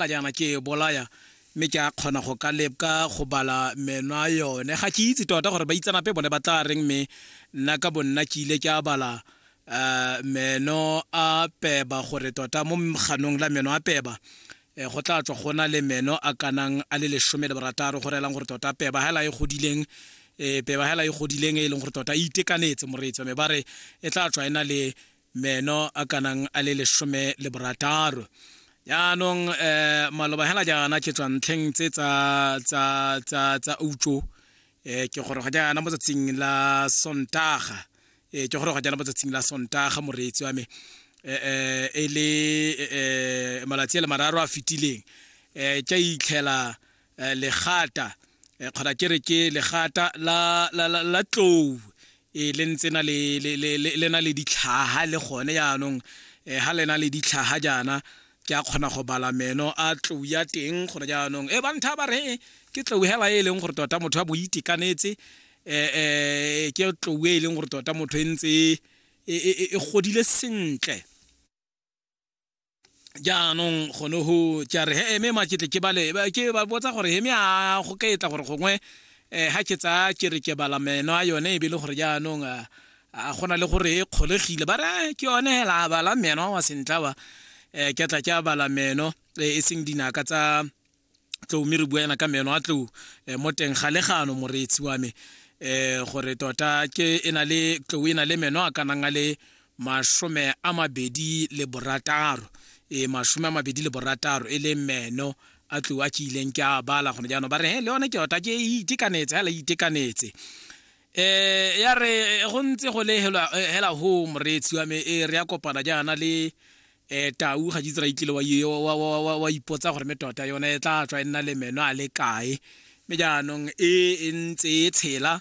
Ka jaana ke e bolaya mme ke a kgona go ka lepka go bala menwa yone ga ke itse tota gore baitsanape bone ba tla reng mme nna ka bonna ke ile ke a bala um meno a peba gore tota mo ganong la meno a peba um go tla tswa go na le meno a kanang a le lesome le borataro go reelang gore tota peba hela e godileng um peba hela e godileng e leng gore tota e itekanetse moreetsi wa me ba re e tla tswa e na le meno a kanang a le lesome le borataro yaanong eh maloba hela jaana ke tswa ntlheng tse tsa tsa tsa tsa utso eh ke gore ga jaana mo tsatsing la sontaga eh ke gore ga jaana mo tsatsing la sontaga moreetsi wa me eh eh e le eh, eh malatsi a le mararo a fitileng eh ke a itlhela eh, legata eh, kgona ke re ke legata la, la, la, la tlou e le ntse na le, le, le, le, le na le ditlhaha le gone jaanong eh, ha le na le ditlhaha jaana ke a kgona go bala meno a tlou ya teng gone jaanong e bantha ba re ke tlou hela e leng gore tota motho a bo itekanetse eh, eh, ke tlou e leng gore tota motho e ntse e, e, e, e godile sentle jaanong gone go tša re he eme maketle ke bale ke ba botsa gore heme a go ka etla gore gongwe um ga ke tsaya ke re ke bala meno a yone e be le gore jaanong a gona le gore e kgolegile ba re ke yone hela a bala meno wa sentla wa um ke tla ke a bala meno e seng dinaka tsa tlou mme re bua ena ka meno a tlou eh, mo teng ga legano moreetsi wa me eh gore tota ke e na le tlou e na le meno a kanang a le masome a mabedi le borataro e masome a mabedi le borataro e le meno a tlou a ke ileng ke a bala gone jaanong ba re le yone ke tota ke e itekanetse fela e itekanetse eh ya re go ntse go le hela home reetsi wa me e re ya kopana jaana le um tau ga jitsra itlile wa ipotsa gore me tota yone e tla tswa e nna le meno a le kae me jaanong e, e ntse e tshela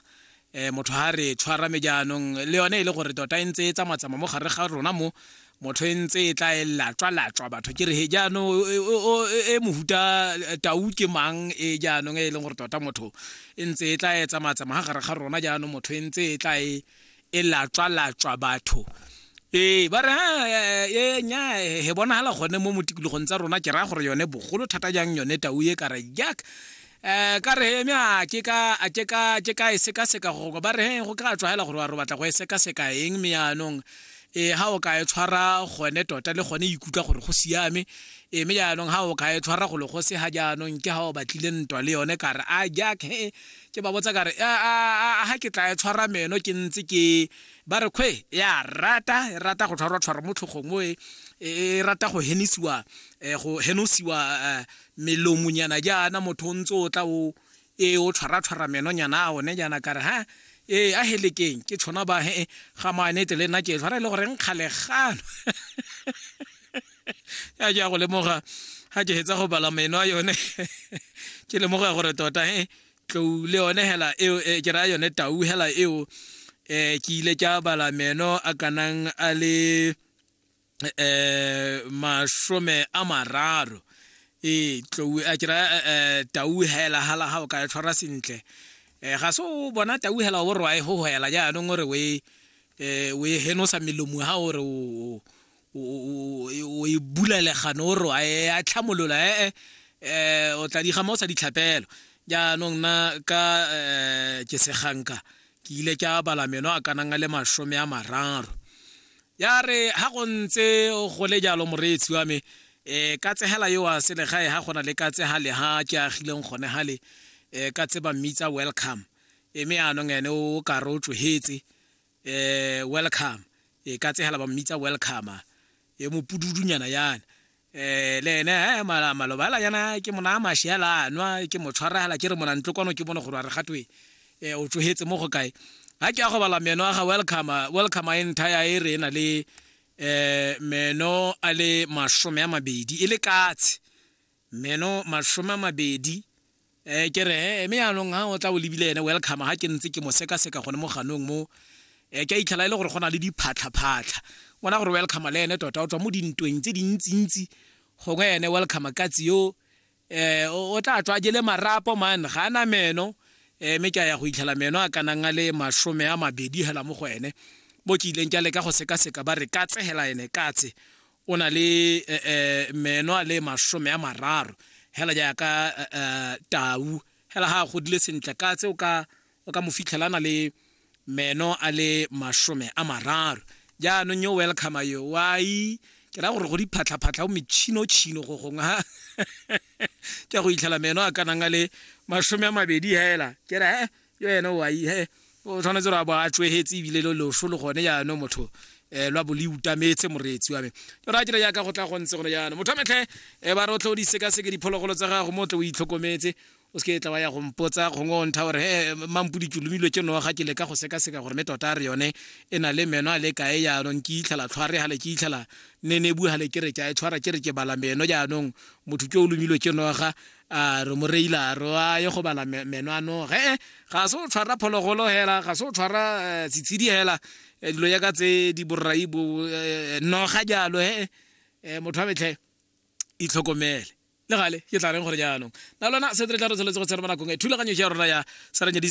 um motho ga re tshwara me jaanong le yone e le gore tota e ntse e tsamatsama mo gare ga rona mo motho e ntse e tla e latswa latswa batho ke re he jaanong e, e, e mohuta tau ke mang e jaanong e leng gore tota motho e ntse e tla e tsamatsama ga gare ga rona jaanong motho e ntse e tla e e latswa-latswa batho ee ba re e nya he bonagala gone mo motikologong tsa rona ke raya gore yone bogolo thata jang yone tau e ka re jack um ka re eme a ke ka e sekaseka gogo ba re he go ka tswa fela gore wa re batla go e sekaseka eng me yaanong e ha o ka e tshwara gone tota le gone ikutlwa gore go siame e me jaanong ha o ka e tshwara go le go se ga jaanong ke ha o batlile ntwa le yone ka re a jack he Ke ba botsa ka re, A ga ke tla e tshwara meno ke ntse ke. Ba re, Kgwe, e a rata, e rata go tshwarwa-tshwarwa mo tlhogong mo, e, e, e rata go henisiwa, eh, go henosiwa eh, melomonyana jaana, motho o ntse o tla o, e, o tshwara-tshwara menonyana a one jaana. Ka re, Ha, e, a helekeng, ke tshona ba, he, ga maanete le nna ke e tshwara, e le gore nkgale gano. ya ja go lemoga ga ke hetsa go bala meno a yone ke lemoga gore tota e eh, tlou le yone hela eo eh, ke raya yone tau hela eo um ke ile ka bala meno a kanang a le um masome a mararo ee tlou a ke raya tau hela hala ga o ka e tshwara sentle um ga se o bona tau hela o re wa e gogoela jaanong o re o e henosa melomo ga o re o o e bula legano o roa e a tlhamolola ee eh o tla diga mo o sa ditlhapelo jaanong na ka eh, ke seganka ke ile ke a bala meno a kanang a le masome a mararo ya re ha go ntse go le jalo moreetsi wa me um ka tsegela yo wa selegae ga gona le ka tsega le ha ke agileng gone ga le um ka tseba mmitsa welcome e me anong ene o kare o tsohetse eh welcome e ka tsegela ba mmitsa welcome e mopududunyana yana eh le ene eh mala malobala yana ke mona mashiala nwa ke motshwaragala ke re mona ntlo kwano ke bone gore re gatwe eh o tsohetse mo go kae ha ke a go bala meno ga welcome welcome a entire e re na le eh meno a le mashome a mabedi e le katse meno mashome a mabedi Eh, ke re he mme yaanong ha o tla o lebile ene welcome ha ke ntse ke mo sekaseka gone mo ganong mo eh, ke a itlhela e le gore go na le diphatlhaphatlha ngwana gore welcome le ene tota o tswa mo dintweng tse dintsintsi gongwe ene welcome katsi yo eh, o tla tswa jele marapo man ga ana meno eh, mme ke a ya go itlhela meno a kanang a le masome a mabedi hela mo go ene mo ke ileng ke a leka go sekaseka ba re ka tsegela ene katse o na le eh, eh, meno a le masome a mararo hela jaaka eh, tau hela ga a godile sentle ka tse o ka o ka mo fitlhela na le meno a le masome a mararo jaanong yo welcome yo wai ke ra gore go diphatlhaphatlha o metšhino-tšhino go gongwe ha ke go itlhela meno a kanang a le masome a mabedi hela ke re eh, yo ene o ai he o tshwanetse ra ba a tswehetse ebile lo loso le gone jaanong motho eh lwa bo le utametse moreetsi wa me yo ra dira yaka go tla go ntse gone jaanong motho metlhe e ba rotlhe o di seka seke diphologolo tsa gago mo tle o itlhokometse o se ke tla wa ya go mpotsa gongwe o ntha gore he mampodi ke lomilwe ke noga ke leka go sekaseka gore me tota re yone e na le meno a le kae jaanong ke itlhela tlhware ga le ke itlhela nenebu ga le ke re ke a e tshwara ke re ke bala meno jaanong motho ke o lomilwe ke noga a re mo reila a re a ye go bala meno ano ge ga se o tshwara phologolo hela ga se o tshwara eh, setshedi hela eh, dilo ya ka tse di borrai bo eh, noga jalo he motho wa metlhe itlhokomele le gale ke tla reng gore jaanong na lona se re tla re tshwanetse go tsena mo nakong e thulaganyo ya rona ya saranya